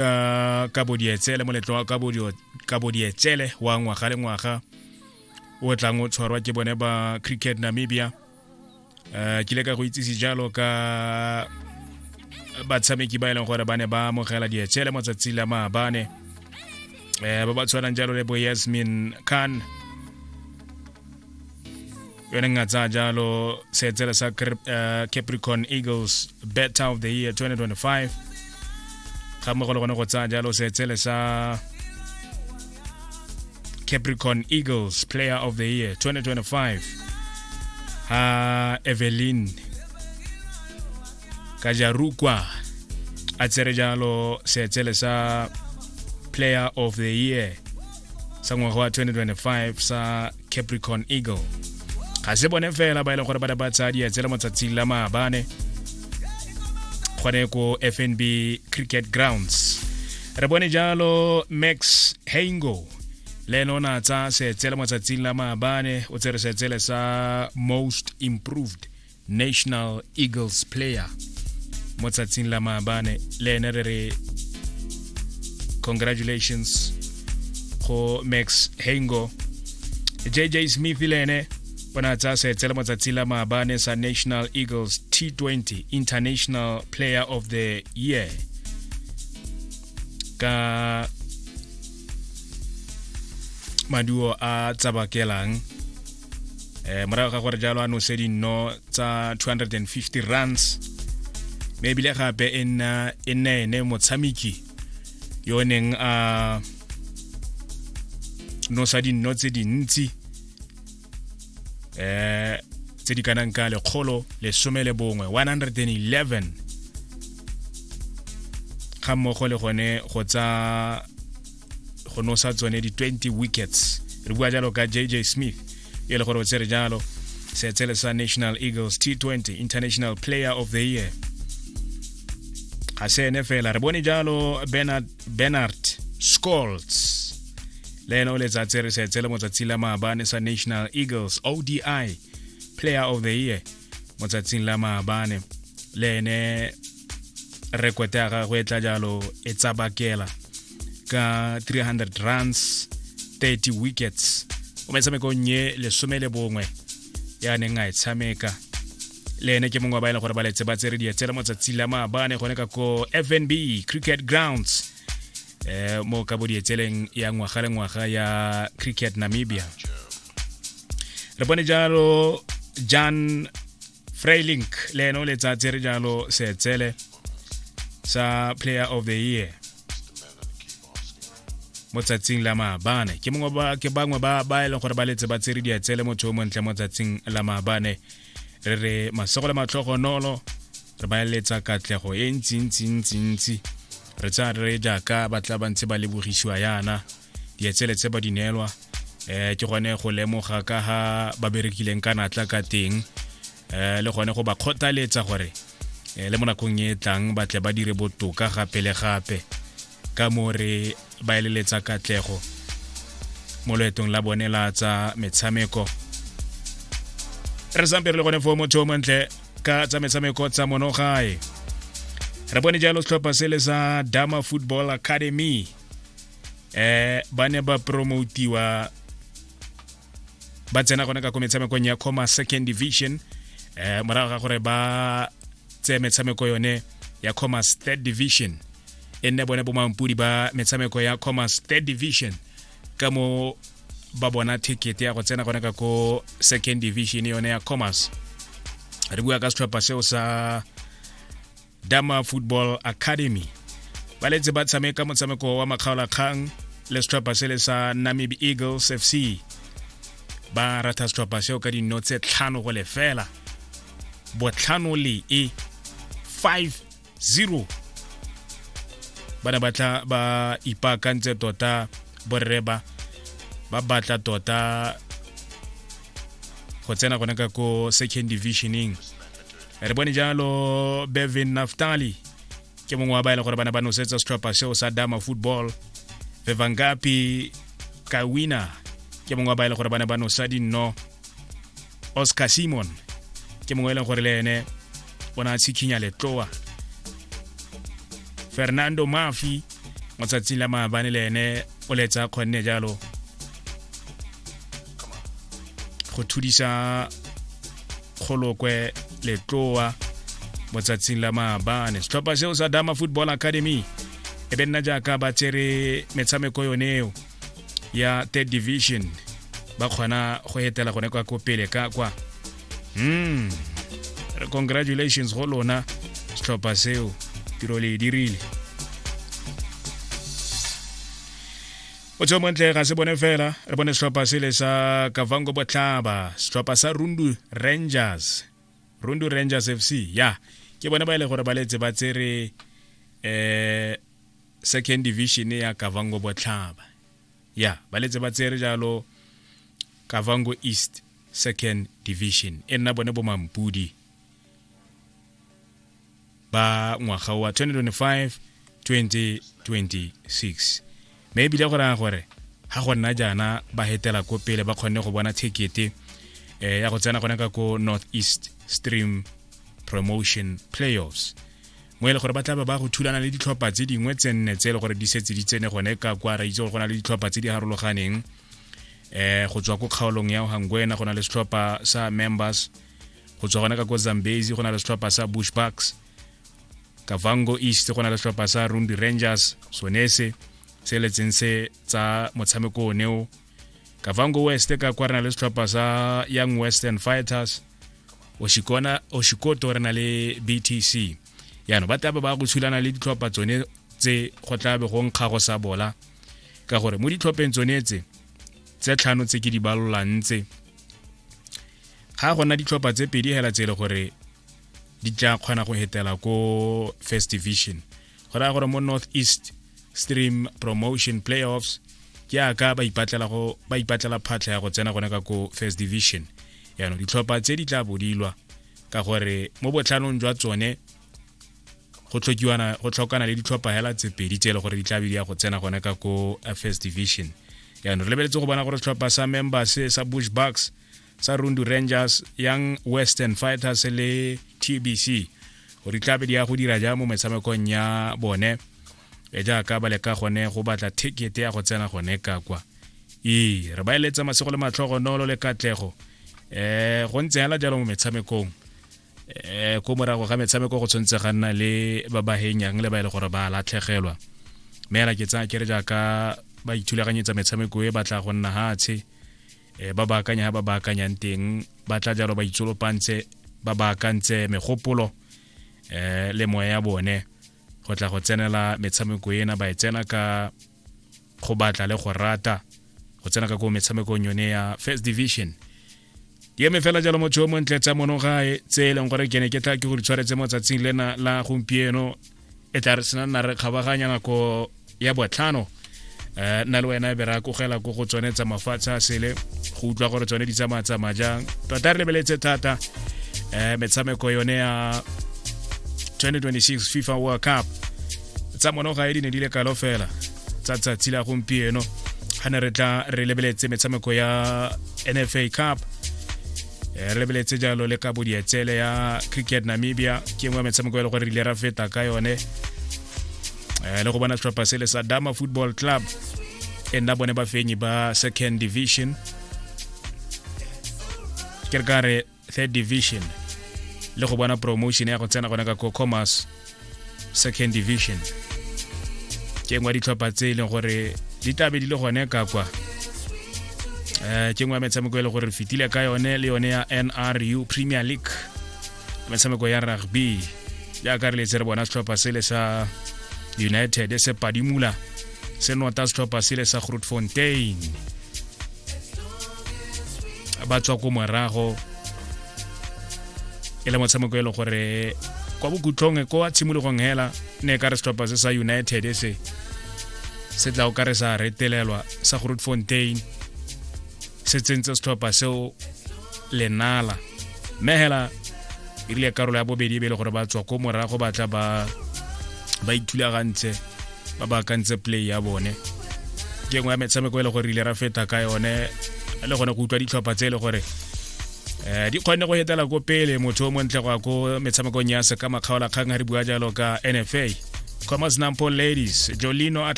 uh, ka bodietsele moletlo wa ka bodietsele wa ngwaga le ngwaga o tlang o tshwarwa ke bone ba cricket namibia um kile ka go itsise jalo ka batshameki ba e leng gore ba ne ba amogela dietsele matsatsi la maabane um ba ba tshwanang jalo le bo yasmin khan yone nna tsaya jalo seetsele sa eh, capricorn eagles better of the year 2025 ga mmogo le gone go tsaya jalo seetsele sa capricorn eagles player of the year 2025 ha evelyn kajarukwa a tsere jalo seetsele sa player of the year sa ngwaga wa 2025 sa capricorn eagle ga se bone fela ba e leng gore ba ne ba tsaya dietsele mo tsatsing la maabane gone ko fnb cricket grounds re bone jalo max hango le ene o ne a tsaya seetsele mo tsatsing la maabane o tsere seetsele sa most improved national eagles player mo tsatsing la maabane le ene re re congratulations go max hengo jj smith le ene o ne a tsaya seetse le matsatsi la maabane sa national eagles t20 international player of the year ka maduo a tsabakelang eh morago ga gore jalo a nose dinno tsa 250 runs mme ebile gape e nna e nna ene motshameki yo o neng a nosa dinno tse dintsi eh tse di kanang ka lekgolo lesome le bongwe 111 ga mmogo le gone go tsa go nosa tsone di-20 wickets re bua jalo ka jj smith e le gore o tsere jalo seetsele sa national eagles t20 international player of the year ga se ene fela re bone jalo bernard, bernard scolts le ene o letsatsi re seetsele motsatsi la maabane sa national eagles odi player of the year motsatsing la maabane le ene rekote ya gagwe e tla jalo e tsabakela ka 300 runs 30 wickets o metshamekong ye lesome le bongwe ya neng a e tshameka le ene ke mongwe wa ba e leng gore ba letse ba tsere dietsela mo tsatsi la maabane gone ka ko fnb cricket grounds eh mo ka bodietseleng ya ngwaga le ngwaga ya cricket namibia re bone jalo jan freilink le ene o letsatse re jalo seetsele sa player of the year mo tsatsing la maabane ke mongwe ba ke bangwe ba ba e leng gore ba letse ba tsere dietsele motho o montle mo tsatsing la maabane re re masogo le matlhogonolo re ba eletsa katlego e ntsi ntsi ntsi ntsi re tsa re jaaka ba tla ba ntse ba lebogisiwa yana dietsele tse ba di neelwa um ke gone go lemoga ka ga ba berekileng ka natla ka teng um le gone go ba kgothaletsa gore um le mo nakong e tlang ba tle ba dire botoka gape le gape ka mo re ba eleletsa katlego mo loetong la bone la tsa metshameko re sampe re le gone fo motho o montle ka tsa metshameko tsa monogae re bone jalo setlhopha se le sa dama football academy eh ba ne ba promotiwa ba tsena gone ka ko metshamekong ya coma second division eh morago ga gore ba tseye metshameko yone ya commerce third division e nne bone bomampudi ba metshameko ya commerce third division ka mo ba bona ticket ya go tsena gone ka ko second division yone ya commerce re bua ka setlhopha seo sa dama football academy ba letse ba tshameka motshameko wa makgaolakgang le setlhopha se le sa namib eagles fc ba ratha setlhopha seo ka dino tse tlhano go lefela botlhano le e 5-0 ba ne batla ba ipaakantse tota borreba ba batla tota go tsena gone ka ko second divisioning re bone jalo bevin naftali ke mongwe wa ba e le gore ba ne ba nosetsa setlhopha seo sa dama football vevangapi kawina ke mongwe wa ba e le gore ba ne ba nosa dinno oscar simon ke mongwe e leng gore le ene o ne a tshikhinya letloa fernando mafi mo tsatsing la maabane le ene o letsa kgonne jalo go thudisa kgolokwe letloa mo tsatsing la maabane setlhopha seo sa dama football academy e be nna jaaka ba tsere metshameko yone eo ya third division ba kgona go etela gone kwa kopele ka kwa mm. congratulations go lona setlhopha seo tiro le e dirile o tsho montle ga se bone fela re bone setlhopha sele sa kavango botlhaba setlhopha sa rundu rangers rundu rangers f c ya ke bone ba e le gore ba letse ba tsere um second division ya kavango botlhaba ya ba letse ba tsere jalo kavango east second division e nna bone bomampudi ba ngwaga wa 2025 2026 mme ebile go raya gore ga go nna jaana ba hetela ko pele ba kgonne go bona thekete eh, ya go tsena gone ka ko north east stream promotion playoffs mo e le gore ba tla ba go thulana le ditlhopha tse dingwe tse nne tse e le gore di setse di tsene gone ka kwa ra itse gore go na le ditlhopha tse di harologaneng eh go tswa ko kgaolong ya ohangwena go na le setlhopha sa members go tswa gona ka ko zambezi go na le setlhopha sa bush bucks kavango east go na le setlhopha sa rundi rangers sonese se letseng se tsa motshameko o neo kavango west ka kwa re na le setlhopha sa young western fighters oshikona oshikoto re na le btc yaanong ba tlabe ba go tshulana le ditlhopha tsone tse go tlabe go nkga go sa bola ka gore mo ditlhopheng tsone tse tse tlhano tse ke di balolang tse ga go na ditlhopha tse pedi hela tse e le gore di tla kgona go hetela ko first division go raya gore mo north east stream promotion playoffs ke aka ba ipatlela go ba ipatlela phatlha ya go tsena gone ka ko first division yaanong ditlhopha tse di tla bodilwa ka gore mo botlhanong jwa tsone go tlhokiwana go tlhokana le ditlhopha hela tse pedi tse e le gore di tla be di ya go tsena gone ka ko first division yaanong re lebeletse go bona gore setlhopha sa members sa bush bucks tsa rundu rangers young western fighters le tbc gore tlabe di ya go dira jang mo metshamekong ya bone e jaaka ba leka gone go batla ticket ya go tsena gone ka kwa ee re ba eletsa masego le matlhogo nolo le katlego um go ntse hela jalo mo metshamekong um ko morago ga metshameko go tshwanetse ga nna le ba ba henyang le ba e le gore ba latlhegelwa mme ke tsaya ke re jaaka ba ithulaganyetsa metshameko e batla go nna hatshe e ba baakanya ba baakanyang teng ba tla jalo ba itsolopantse ba baakantse megopolo eh le moya ya bone go tla go tsenela metshameko ena ba e tsena ka go batla le go rata go tsena ka ko metshamekong yone ya first division ke eme fela jalo motho yo montle tsa mono gae tse e leng gore ke ne ke tla ke go di tshwaretse mo tsatsing lena la gompieno e tla re sena nna re kgabaganya nako ya botlhano um nna le wena e be ra kogela ko go tsone tsa mafatshe a sele go utlwa gore tsone di tsamaya tsamaya jang tota re lebeletse thata um metshameko yone ya 2026 fifa world cup tsa mono ga e di ne di le kalo fela tsa tsatsi la gompieno ga ne re tla re lebeletse metshameko ya nfa cup Eh, re lebeletse jalo le ka bodietsele ya cricket namibia ke nngwe ya metshameko e le gore re ile ra feta ka yone eh, le go bona tlhopha sele sa dama football club e nna bone bafenyi ba second division ke re ka re third division le go bona promotion ya go tsena gone ka cocomers second division ke ngwa ditlhopha tse e leng gore di tlabe di le gone ka kwa um ke ngwe ya metshameko e le gore fetile ka yone le yone ya nru premier league metshameko ya rugby jaaka re letse re bona setlhopha sele sa united e se padimula se nota setlhopha sele sa grootfontein ba tswa ko morago e le motshameko e le gore kwa bokhutlhong ko wa tshimologong hela ne e ka re setlhopha se sa united e se se tla o ka re sa retelelwa sa groot fontain se tsentse setlhopha seo lenala mme hela e rile karolo ya bobedi e be e le gore ba tswa ko morago ba tla ba ba ithulagantse ba ba akantse play ya bone ke nngwe ya metshameko e le gore ile ra feta ka yone le gone go utlwa ditlhopha tse e le gore um di kgonne go etela ko pele motho o montle go ya ko metshamekong ya seka makgaolakgang ga re bua jalo ka nfa commerce nampo ladies jolino